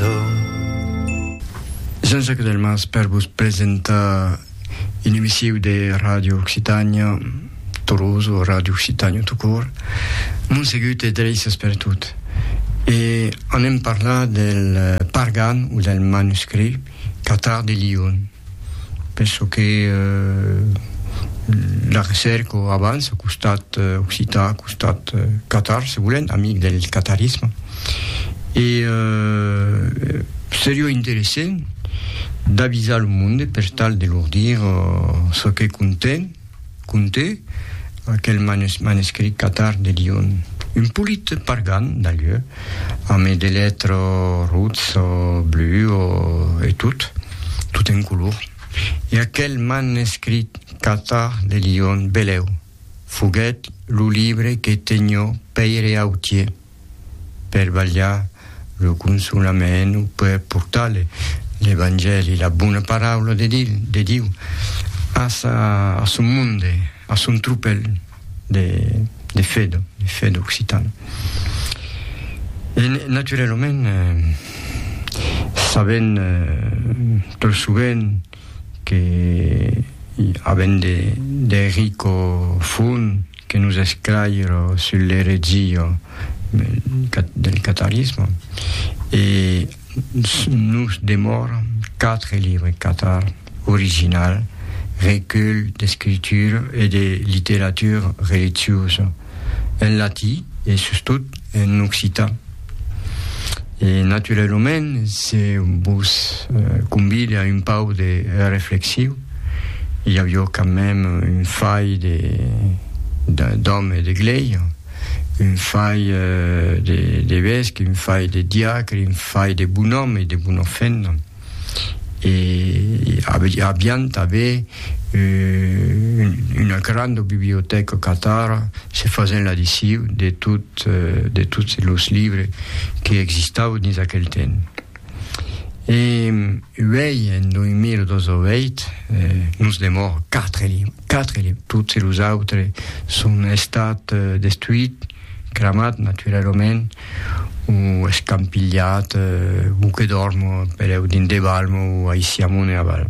d'or. Jean-Jacques Delmas per vos presentar un emissiu de Radio Occitània Torós o Radio Occitània tout court. Montsegut e Dreises per tot. E anem parlar del Pargan o del manuscrit Catar de Lion. penso que la recerca avança au costat occitan, au costat catar, se volem, amic del catarisme. E euh, seria interessant d'avisar lo monde per tal de lor dire ce que conten, Conte aquel manescrit catar de Lion. Un polit pargan d'alieu, ame de letro rutz o blu o e tot, tot en color. E aquel manescrit catar de Lion beleu foguèt lo libre que tenho Pèire Autier. per balhar lo consolament o per portar l'Evangèli, la bona paraula de Diu, de Diu a, sa, a son monde, a son tropèl de, de fe, de fe d'occitan. E naturalament, eh, sabent eh, tot sovent que avent de, de rico fons, que nos esclairo sul l'eretzio del catarisme e nos demòra quatre libres catar original recull d'escritura e de literatura religiosa en latí e sustot en occitan. E naturalament, se vos convide a un pau de reflexiu, i avió quand mèm un fai de d'òme de glèia, un fai de d'evesque, un fai de diacre, un fai de bonòme e de bonòfena. e avián tanben una granda bibliotèca catara se fasent l'adiciu de tots los libres que existavan dins aquel temps. E uèi, en 2018, nos demòra quatre libres, quatre libres, tots los autres son estats destruits, cramats naturalament, o escampilhat, o que dòrmo per eu dins de balm o aicí amont e aval.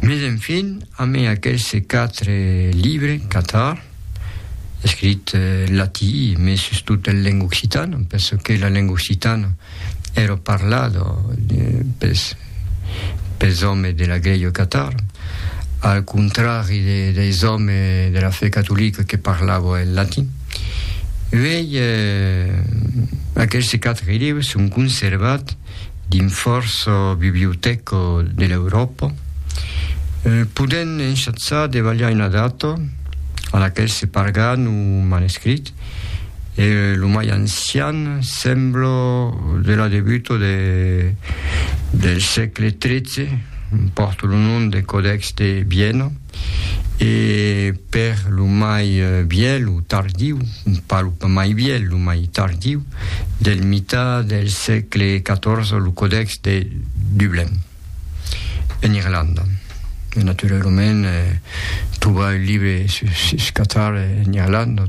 Mes enfin, amé aquelse quatre libre, Catar, escrit en latí, mes sustot en lenga occitana, perçò que la lenga occitana, ero parlado pes pes òmes de la Glèia Catar, al contrari de deis òmes de la fe catolica que parlavo en latin. Uèi eh aqueste quatre libres son conservats dins fòrça bibliotèca de l'Euròpa, podent en chatsar de balhar una data a laquel se pargan o manuscrit. e lo mai ancian sembla de la debuta de, del sègle XIII, pòrt lo nom de Codex de Viena, e per lo mai vièlh o tardiu, pas lo mai vièlh, lo mai tardiu, del mitat del sègle XIV, lo Codex de Dublin. en Irlanda. E naturalament trobar un libre sus Qatar en Irlanda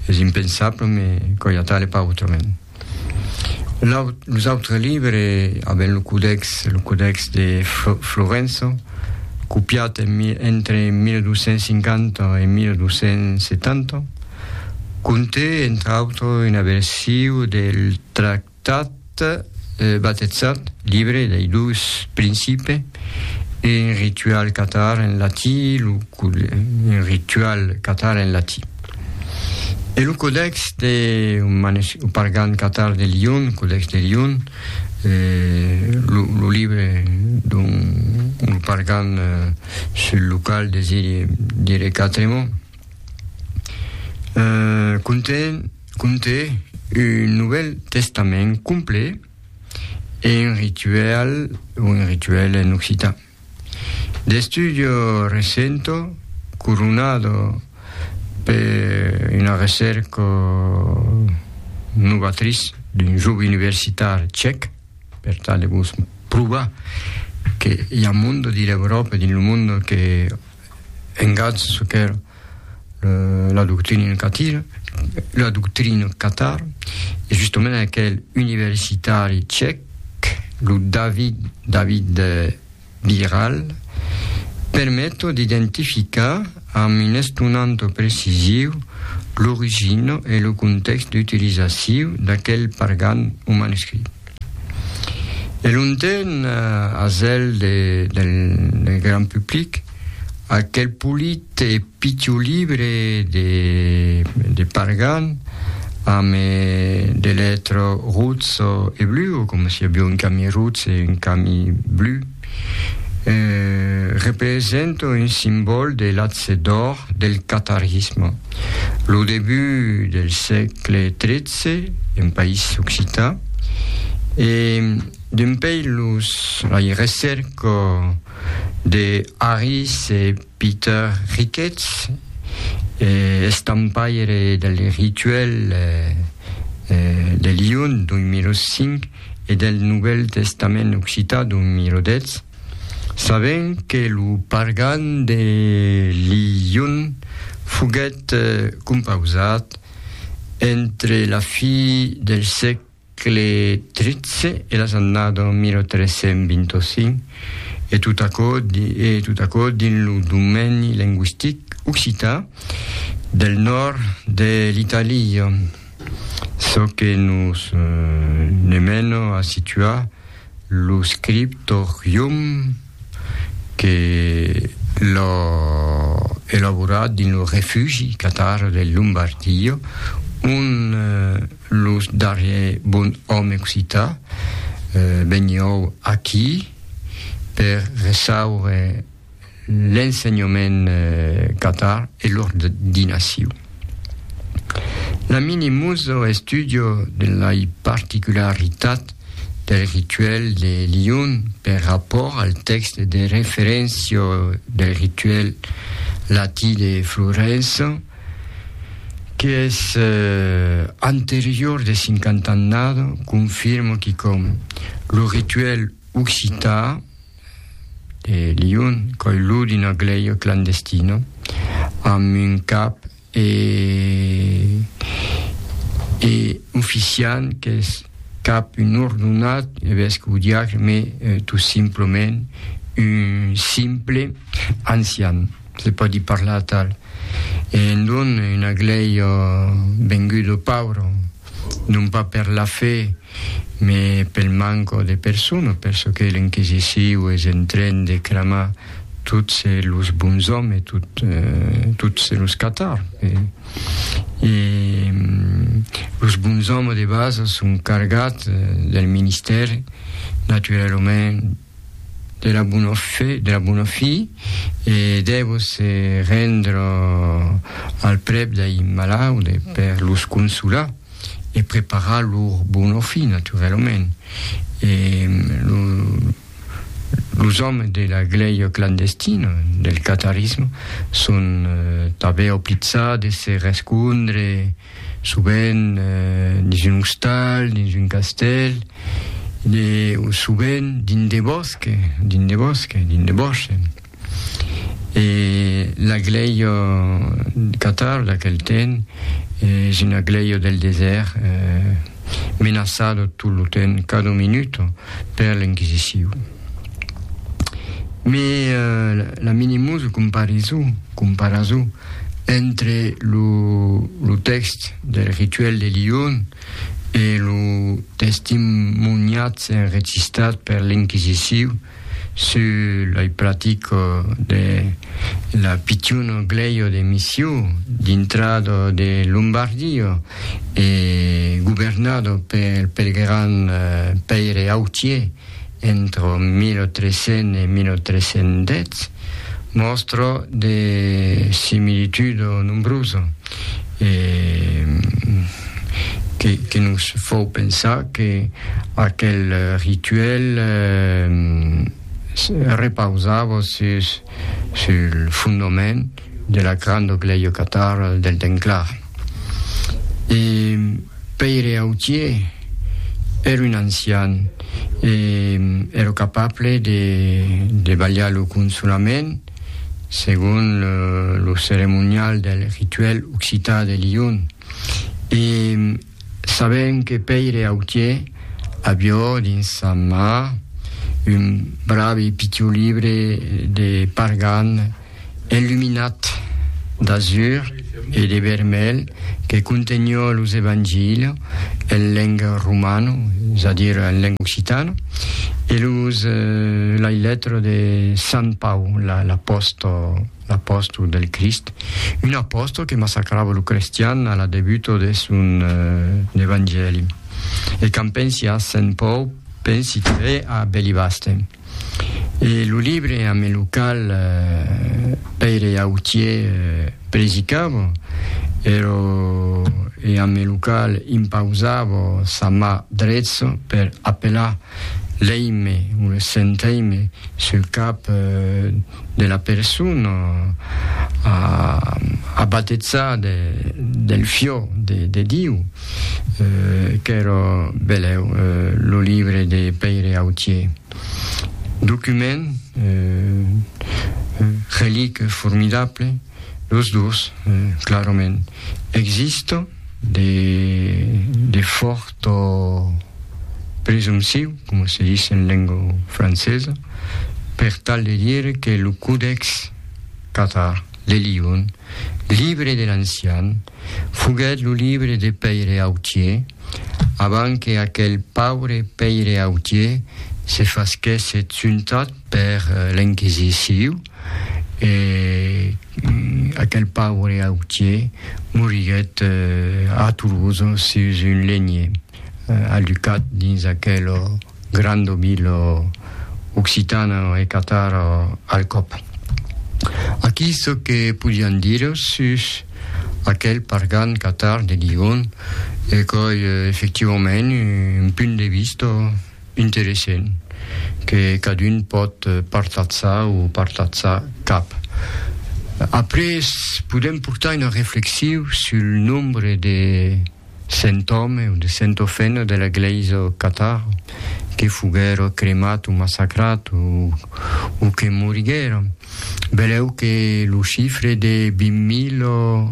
es impensable, me coi atal e pas autrament. Los autres libres aben lo codex, lo codex de Florença, copiat entre 1250 e 1270, conté entre autres una version del tractat Tat batezat, libre dei dus principe, e un ritual catar en latí lo un ritual catar en latí. E lo codex de o pargan catar de Lion, codex de Lion, lo lo libre d'un un pargan sul lo qual desiri dire quatre mots, conten Conté un Novèl Testament complet e un rituèl o un rituèl en occitan. D'estudio recento coronado per una recèrca novatris d'un jove universitar chèc, per tal de vos provar que i a un monde dins l'Euròpa e dins lo monde que engatz çò qu'èra la doctrina en catir, la doctrina Qatar, e justament aquel universitari tchèc, lo David, David Biral, permet d'identificar amb un estonanta precisiu l'origina e lo contèxt d'utilizaciu d'aquel pargan o manuscrit. De longtemps, a zèl de, del, del grand public, aquel polit e pitiu libre de, de Pargan, amb e, de letro rouds e blu, o com si avió un cami rouds e un cami blu, representa un simbòl de l'atge d'òr del catarisme. Lo debut del sègle XIII, en país occità, e dempuèi los, la recerca de Harris e Peter Ricketts, estampaire del Rituel de Lyon, 2005, e del Novèl Testament Occitan, 2010, sabent que lo pargan de Lyon foguèt compausat entre la fi del sègle que le 13 e las annada 1325, e tot aquò, e tot aquò dins lo domeni lingüistic occitan del nòrd de l'Italia, çò que nos ne mena a situar lo scriptorium que l'a elaborat dins lo refugi catar de Lombardia, ont Lo darrier bon òme occità vegnió aquí per reçaure l'ensenhament catar e l'ordinaciu. La mini muso estudio de lai particularitat del rituel de Lyon per rapòrt al text de referencio del rituel latí de Florença, qu'es anterior de 50 annada, confirmo quicòm, lo rituèl occità de Lion, coilhut d'una glèia clandestina, amb un cap e, e oficiant qu'es cap un ordonat, evesque o diacre, me tot simplament un simple ancian, se pòdi parlar atal. e en don una glèi ò vengut ò pauro, non pas per la fe, me pel manco de persona, per çò que l'Inquisiciu es en tren de cramar tots los bons òmes, tots los catar. E los bons òmes de basa son cargats del ministèri, naturalament, de la bona fe, de la bona fi, e dèvo se rendre al prèp dei malaude per los consolar e preparar lor bona fi, naturalament. E lo, los òmes de la glèia clandestina, del catarisme, son tanben oblitzats de se respondre, sovent dins un ostal, dins un castèl, e sovent dins de bòsques, dins de bòsques, dins de bòsques. E la glèia Qatar d'aquel temps es una glèia del desèrt menaçada tot lo temps, cada minuta, per l'Inquisicion. Mes la minimus comparisson, comparason, entre lo tèxt del Rituèl de Lion e lo testimoniatge enregistrat per l'Inquisiciu sus la practica de la pichon glèia de Missiu dintrad de Lombardia e governada pel gran Pèire Autier. entre 1300 e 1310, mòstra de similitude nombrosa e que nos fau pensar que aquel rituèl repausava sus sul fondament de la crando glèio catar del Denclar. E Pèire Autier ère un ancian e ère capable de de balhar lo consonament segon lo ceremonial del rituèl occitan de Lion e Sabent que Pèire Autier avió dins sa mà un bravi pitiu libre de Pargan enluminat d'azur e de vermelh que contenió los Evangilio en leng romano, es a dire en leng occitana, e los Lailetro de Sant Pau, l'apòstol. L'apòstol del Crist, un apòstol que massacrava lo crestian a la debuta de son Evangèli. E quand pensi a Sent Pòu, pensi tanben a Belibaste. E lo libre ame lo cal Pèire Autier predicava ero e ame lo cal impausava sa mà dretza per apelar l'Eime o le Sent Eime sul cap de la persona a batezar del fiò de Diu, qu'èra belèu lo libre de Pèire Autier, document relic formidable, los dos clarament existon de fòrt. Tò presompsiu, coma se ditz en lengo francesa, per tal de dire que lo Codex Cathar de Lyon, libre de l'ancian, foguèt lo libre de Pèire Autier avant que aquel paure Pèire Autier se fasquèsse tuntat per l'Enquisiciu. e aquel paure autier moriguèt a Toulouse sus un lenhier alucat dins aquel grand obil occitan e catar al còp. Aquí çò que podián dire sus aquel pargan catar de Ligon e qu'ei efectivament un punt de vista Interessent que cadun pòt partatzar o partatzar cap. Après podèm portar una reflexiu sul nombre de cent òmes o de cent ofènnas de la glèisa au Qatar que foguèron cremats o massacrats o que moriguèron. Velèu que lo chifre de 20.000 o.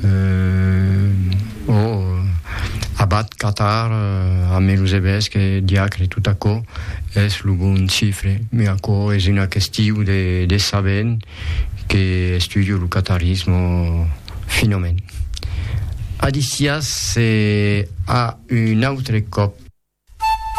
eh, ò abat Catar amé los evesques e diacre tot aquò es lo bon chifre, me aquò es una questiu de de sabent que estudio lo catarismo finament. Adisias e a un autre còp.